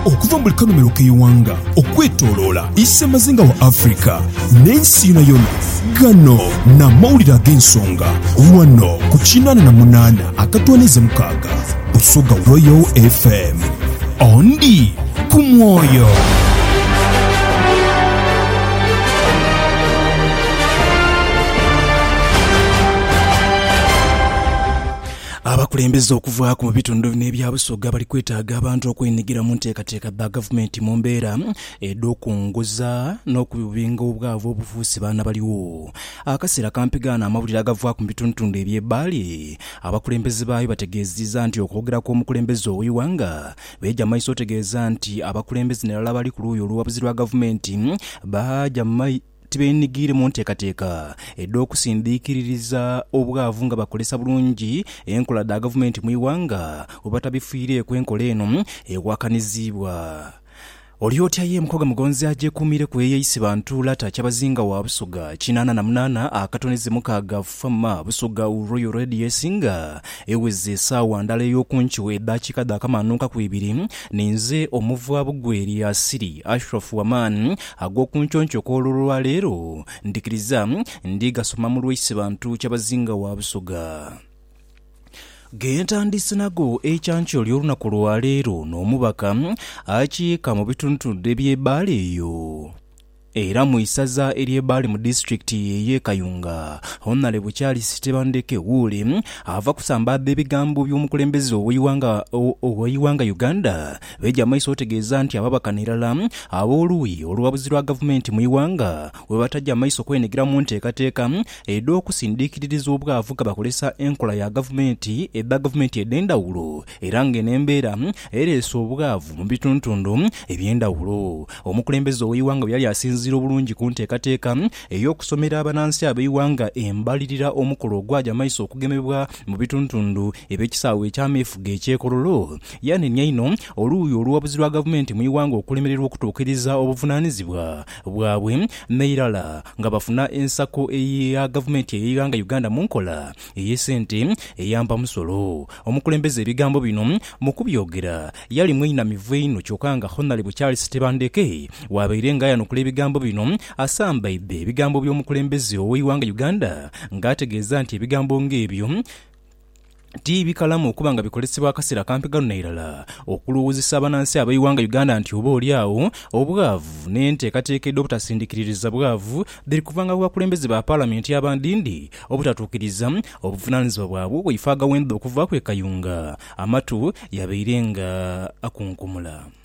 Okuva mu buli kanhumilo k'eighanga okwetoloola isemazinga wa Africa n'ensi yonayona, gano n'amawulire ag'ensonga ghano ku kinaana na munaana akatwaniiza mukaaga Busoga Royal FM. Ondi ku mwoyo. Abakulembeze okuvaaku mu bitundu bino ebya Busoga bali kwetaaga abantu okwenhigira mu nteekateeka dha Gavumenti mu mbeera edh'okunguza n'okubinga obwavu obufuuse baana baligho. Akaseera kampi gaano amawulire agavaaku mu bitundutundu eby'e Bbaale abakulembeze baayo bategeeziza nti okwogera kw'omukulembeze ow'eighanga Meeja Maiso otegeeza nti abakulembeze nairala abali ku luuyi olw'obuwabuzi lwa Gavumenti baaja tibeenhigiire mu nteekateeka edh'okusindiikiririza obwavu nga bakozesa bulungi enkola dha gavumenti mu ighanga bwe batabifiireeku enkola eno ewakanizibwa. Oli otya ye Mukogha Mugonzi agyekuumireku eyeeyise bantu Lata Kyabazinga wa Busoga kinaana na munaana akatonize mukaaga FM Busoga Royal Radius nga eweze esaawa ndala ey'oku nkyo edaakiika dhaakamanhuukaku ibiri ninze omuva Bugweri Asili Ashraf Aman ag'oku nconco okw'olwo lwa leero, ndhikiriza ndi gasoma mu lwaise bantu kyabazinga wa Busoga. Ghentandiise nago ekyankyo ly'olunaku lwa leero n'omubaka akiika mu bitundutundu eby'e Bbaale eyo era mu isaza ery'e Bbaale mu disitulikiti ey'e Kayunga, Honalebo Charles Tebandeke Woole ava kusambaadha ebigambo by'omukulembeze ow'eighanga Uganda, Beja maiso otegeeza nti ababakana irala ab'oluuyi olwabuzi lwa gavumenti mu ighanga bwebataja maiso kwenhigira mu nteekateeka edh'okusindikiririza obwavu nga bakolesa enkola ya gavumenti edha gavumenti edhendhawulo era nga eno embeera ereese obwavu mu bituntundu ebyendhawulo omukulembeze ow'eighanga bweyali asinziira obulungi ku nteekateeka ey'okusomera abanansi ab'eighanga embalirira omukolo ogwaja maiso okugemebwa mu bituntundu eby'ekisaawe eky'ameefuga ekye Kololo Yanenia inho oluuyi oluwabuzi lwa gavumenti mu ighanga okulemererwa okutuukiriza obuvunanizibwa bwabwe neirala nga bafuna ensako eya gavumenti eyeighanga Uganda munkola eyesente eyampa musolo. Omukulembeze ebigambo bino mukubyogera yali mweinamivu einho kyoka nga Honalebo Charles Tebandeke wabaire nga ayanukula ebigambo bino asambaidhe ebigambo byomukulembeze oweighanga Uganda nga ategeeza nti ebigambo nga ebyo ti bikalamu okuba nga bikolesebwa akaseera kampi ghano nairala okulowoozesa abanansi ab'eighanga Uganda nti oba oli agho obwavu n'enteekateeka edh'obutasindikiririza bwavu dhiri kuvanga ku bakulembeze ba Palamenti abandindi obutatuukiriza obuvunaanizibwa bwabwe obwaife agawendha okuvaaku e Kayunga. Amatu yabaire nga akunkumula.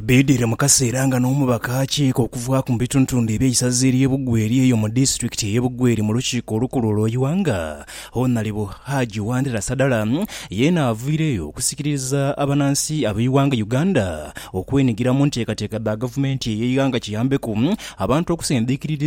Bidhire mu kaseera nga n'omubaka akiika okuvaaku mu bitundutundu eby'eisaza ery'e Bugweri eyo mu disitulikiti ey'e Bugweri mu lukiiko olukulu olw'eighanga, Honalebo Haji Wandera Sadala yeena avaireyo okusikiriza abanansi ab'eighanga Uganda okwenigira mu nteekateeka dha gavumenti ey'eighanga kiyambeku abantu okusindikiririza